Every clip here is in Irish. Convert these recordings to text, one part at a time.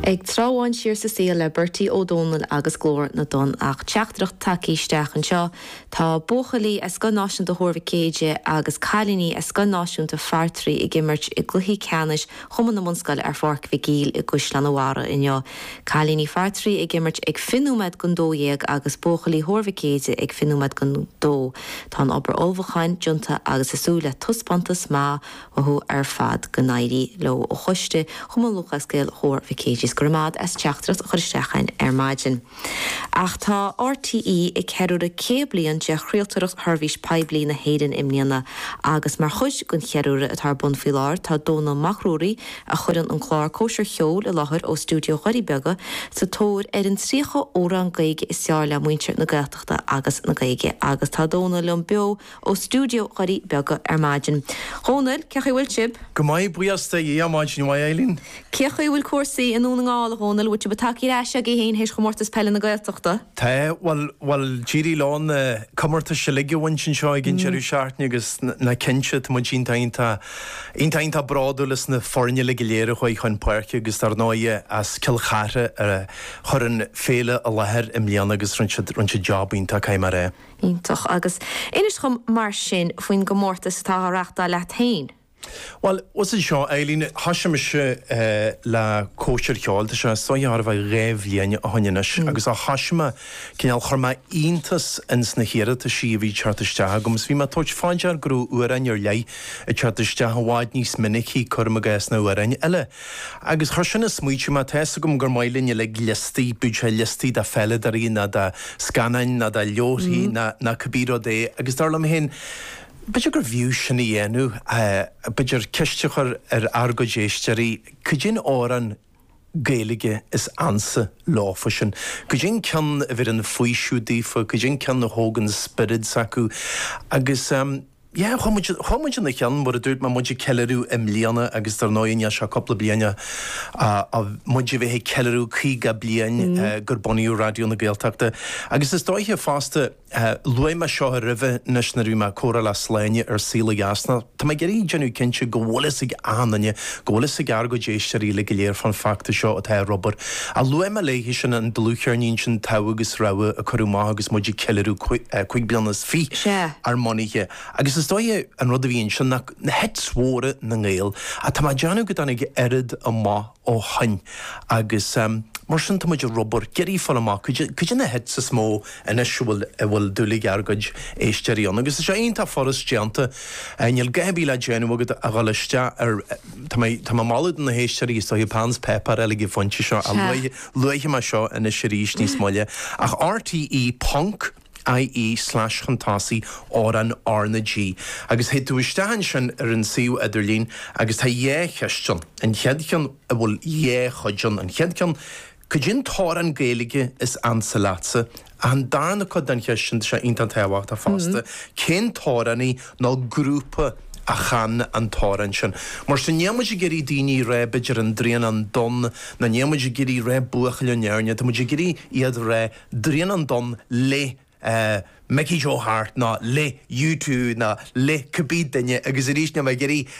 Ag tráth sin Siar sa saol le Bertie Ó Domhnaill agus Glór na dTonn ach teachtaireacht tagtha isteach anseo, Tá buachaillí as Scoil Náisiúnta Thuar Mhic Éadaigh agus cailíní as Scoil Náisiúnta Phartraí ag imirt i gcluichí ceannais Chumann na mBunscoil ar Pháirc Mhic Éil i gCaisleán a Bharraigh inniu. Cailíní Phartraí ag imirt ag fiche nóiméad don dó dhéag agus buachaillí Thuar Mhic Éadaigh ag fiche nóiméad don dó. Tá an obair ullmhúcháin déanta agus muid ag súil le taispeántas maith uathu ar fad. Go n-éirí leo ó choiste Chumann Lúthchleas Gael Thuar Mhic Éadaigh 's go raibh maith agat as teachtaireacht a chur isteach chugainn ar maidin. Ach tá RTÉ ag ceiliúradh 100 bliain de chraoltóireacht sheirbhís poiblí na hÉireann i mbliana agus mar chuid den cheiliúradh atá ar bun faoi láthair tá Dónall Mac Ruairí, a chuireann an clár Cóisir Cheoil i láthair ó stiúideo Dhoirí Beaga, sa tóir ar an 30 amhrán Gaeilge is fearr le muintir na Gaeltachta agus na Gaeilge agus tá Dónall liom beo ó stiúideo Dhoirí Beaga ar maidin. Dhomhnaill, cé chaoi bhfuil sibh? Go maith, buíochas de Dhia, maidin mhaith, Eileen. Cé chaoi bhfuil cúrsaí i nDún na nGall, a Dhomhnaill, bhfuil sibh tagtha ar ais agaibh fhéin théis Chomórtas Peile na Gaeltachta? Tá, bhuel, bhuel, d'éirigh leo na comórtais uilig a bhaint anseo ag an deireadh seachtaine agus nach cinnte, tá muid iontach, iontach, iontach, iontach bródúil as na foirne uilig go léir a chuaigh chun páirce agus dar ndóighe as Cill Chartha a chuir an féile i láthair i mbliana agus rinne siad, rinne siad job iontach, caithfidh mé a rá. Iontach. Agus inis dhom mar sin faoin gcomórtas atá á reachtáil leat féin. Bhuel, is é seo é, Eileen. Thoisigh mise le cóisir cheoil, tá sé seo thar a bheith dhá bhliain ó shin anois, agus ó thoisigh mé, cineál, chuir mé iontas ins na hiarrataisí a bhí ag teacht isteach agam, is bhí mé ag tabhairt fá dear go raibh amhráin ar leith ag teacht isteach i bhfad níos minicí, cuirim i gcás, ná amhráin eile. Agus chuir sin ag smaoitiú mé. Tá fhios agam gur maith linn uilig liostaí, bíodh sé liostaí de pheileadoirí ná de scannáin ná de leabharthaí ná cibé rud é agus dar liom féin, b'fhéidir gur bhfiú sin a dhéanamh, b'fhéidir ceist a chur ar ár gcuid éisteoirí, cad é an t-amhrán Gaeilge is ansa leofa sin? Cad é an ceann a bheireann faoiseamh daofa, cad é an ceann a thógann spiorad s'acu agus. Yeah, chuaigh muid, chuaigh muid ina cheann, mar a dúirt mé, muid ag ceiliúradh i mbliana agus dar ndóigh níl sé ach cúpla bliain a, a, a, muid a bheith ag ceiliúradh caoga bliain ón uair a bunaíodh Raidió na Gaeltachta agus is dóiche fosta, luaigh mé seo roimhe anois nuair a bhí mé ag comhrá le Sláine ar Saol ó Dheas ná tá mé ag iarraidh déanamh cinnte go bhfuil fhios ag achan duine Go bhfuil fhios ag ár gcuid éisteoirí uilig go léir fán feachtas seo atá ar obair. Ach luaigh mé a leithéid sin an dlúthcheirnín sin Togha agus Rogha a cuireadh amach agus muid ag ceiliúradh cúig bliana is fiche Sea. ár mbunaithe. Agus is dóighe an rud a bhí ansin ná na hits mhóra na nGael. Ach tá mé ag déanamh go dtáinig oiread amach ó shoin. Agus mar sin tá muid ag obair, ag iarraidh fáil amach caidé na hits is mó anois a bhfuil dúil ag ár gcuid éisteoirí ann. Agus tá sé iontach furast déanta. Níl a dhath ar bith le déanamh agat ach dhul isteach ar Tá mé ag moladh do na héisteoirí is dóiche peann is páipéar a fháil ag an phointe seo a luaifidh mé seo anois arís níos moille ach rte ponc IE slash chun tosaigh amhrán R na G agus théid tú isteach ansin ar an suíomh idirlín agus tá dhá cheist ann an chéad cheann a bhfuil dhá chuid ann an chéad ceann Caidé an t-amhrán Gaeilge is ansa leatsa. Ach an darna cuid den cheist sin, tá sé iontach tábhachtach fosta, cén t-amhránaí nó grúpa a chan an t-amhrán sin? Mar sin, níl muid ag iarraidh daoine rá b'fhéidir An Draighneán Donn ná níl muid ag iarraidh rá Buachaill ón Éirne, tá muid ag iarraidh iad rá Draighneán Donn le. eh, Mickey Joe Harte ná le U Two ná le cibé duine agus arís níl mé ag iarraidh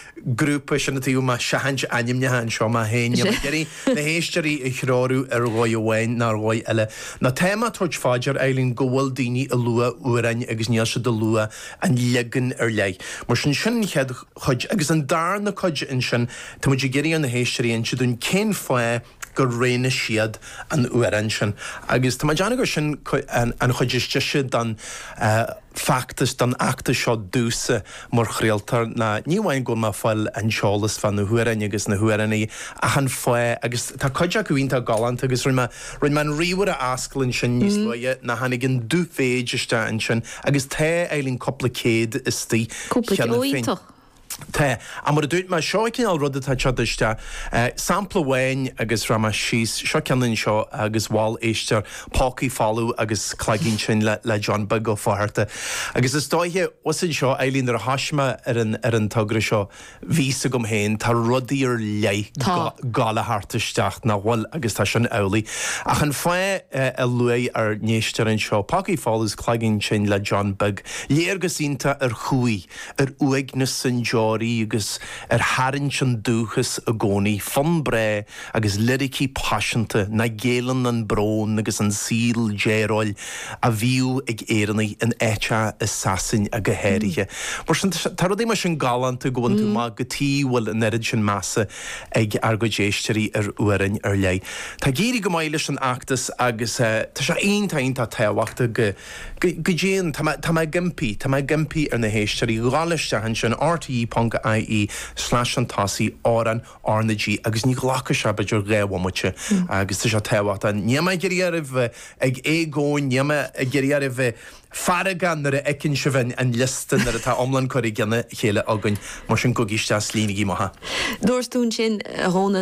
grúpa sin, tá mé ag seachaint ainmneacha anseo má théann, níl mé ag iarraidh na héisteoirí a threorú ar dhóigh amháin ná ar dhóigh eile. Ná tá mé ag tabhairt fá dear Eileen go bhfuil daoine ag lua amhráin agus níl siad ag lua an leagan ar leith. Mar sin, sin an chéad chuid agus an darna cuid ansin tá muid ag iarraidh ar na héisteoirí inse dúinn cén fáth gur roghnaigh siad an t-amhrán sin agus tá mé ag déanamh gur sin an chuid is deise don feachtas, don fheachtas seo domhsa mar chraoltóir ná ní amháin go bhfuil mé ag fáil an t-eolas fá na hamhráin agus na hamhránaithe ach an fáth agus tá cuid acu iontach galánta agus rinne mé, rinne mé an ríomhaire a fhoscailt ansin níos luaithe ná tháinig an dubh-mhéid isteach ansin agus tá, Eileen, cúpla céad istigh cheana féin. Cúpla, ó iontach. Tá. Ach mar a dúirt mé, seo an cineál ruda atá ag teacht isteach. Sampla amháin agus scríobh mé síos, seo ceann anseo agus mhol éistear pócaí folamh agus cloigeann tinn le John Beag Ó Flatharta. Agus is dóiche, uas anseo, Eileen, nuair a thoisigh mé ar an togra seo, bhí a fhios agam féin, tá rudaí ar leith ag gabháil a theacht isteach nach bhfuil agus tá sin amhlaidh. Ach an fáth a luaigh ár n-éisteoir anseo, pócaí folamh is cloigeann tinn le John Beag, léargas iontach ar chumhaidh. ar uaigneas an deoraí agus ar tharraingt an dúchas i gcónaí, fonn breá agus liricí paiseanta nach gceileann an brón agus an saol dearóil a bhíodh ag Éireannaigh in áiteacha i Sasain go háirithe. Mar sin, tá rudaí mar sin galánta go bhfaigheann tú amach cad chuige a bhfuil an oiread sin measa ag ár gcuid éisteoirí ar amhráin ar leith. Tá ag éirí go maith leis an fheachtas agus tá sé iontach iontach tábhachtach go Go ndéan, tá mé, tá mé ag impí, tá mé ag impí ar na héisteoirí dhul isteach ansin, rte.ie slash chun tosaigh, amhrán R na G, agus ní ghlacfaidh sé b'fhéidir dhá bhomaite agus tá sé tábhachtach. Níl mé ag iarraidh oraibh a bheith ag éagaoin, níl mé ag iarraidh oraibh a bheith feargach nuair a fheiceann sibh an an liosta nuair atá iomlán curtha i gceann a chéile againn, mar sin gabhaigí isteach 's líonaigí amach é. Dúirt tú ansin, a Dhónaill.